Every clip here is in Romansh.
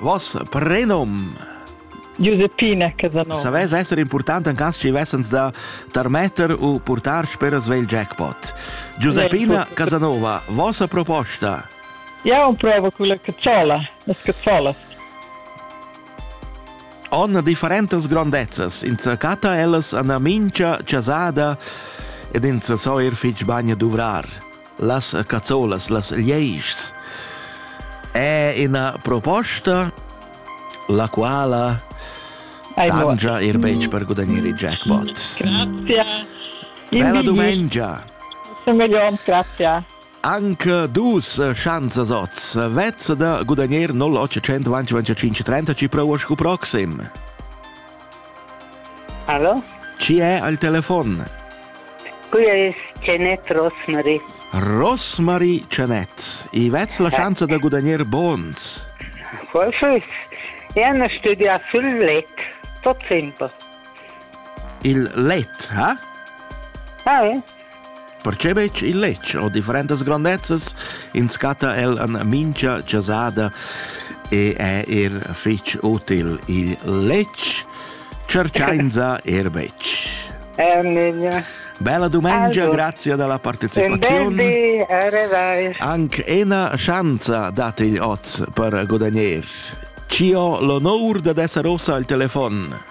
Vos prenum Giuseppina Casanova. Savess esser important en caso ci vessens da tarmetter u portar sper svegl jackpot. Giuseppina Casanova, vossa proposta? Ja, un provo con la cacciola, las cacciolas. On differentas grondezzas, ins catta ellas an mincha chasada ed ins so er fitg bagn duvrar. las cazzolas, las lieigs. È ina proposta la quala tangia ir betg per gudagnare il jackpot. Grazie. Bella domenica. Semelions, grazie. Anche dus chance oz. Vezza da gudagnare 0825 30 ci provo scu proxim. Allo? Chi è al telefon? Quia es Janet Rosmarie. Rosmarie Janet, i vets la chance da gudagner bons? Forse. Io studia sul let, tot semper. Il let, ha? Ah, eh? Perche betg il letg o differentas grandezzas inscatta el an mincha chasada e è er fich util il letg, cerchainsa er betg. Eh, Nenja. Bella dumengia, also, grazie della partecipazione. Anche una chance date gli oz per guadagnare. Ci ho l'onor da essere rossa al telefono.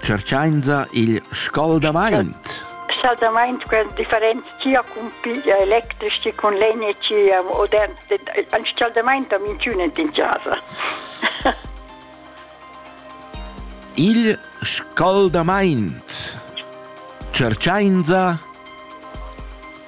Tscherchainsa il scaldamaint. Scaldamaint gran differenz chia cun piglia electric che cun legna chia modern. Ein scaldamaint am intunet in casa. Il scaldamaint. Cerciainsa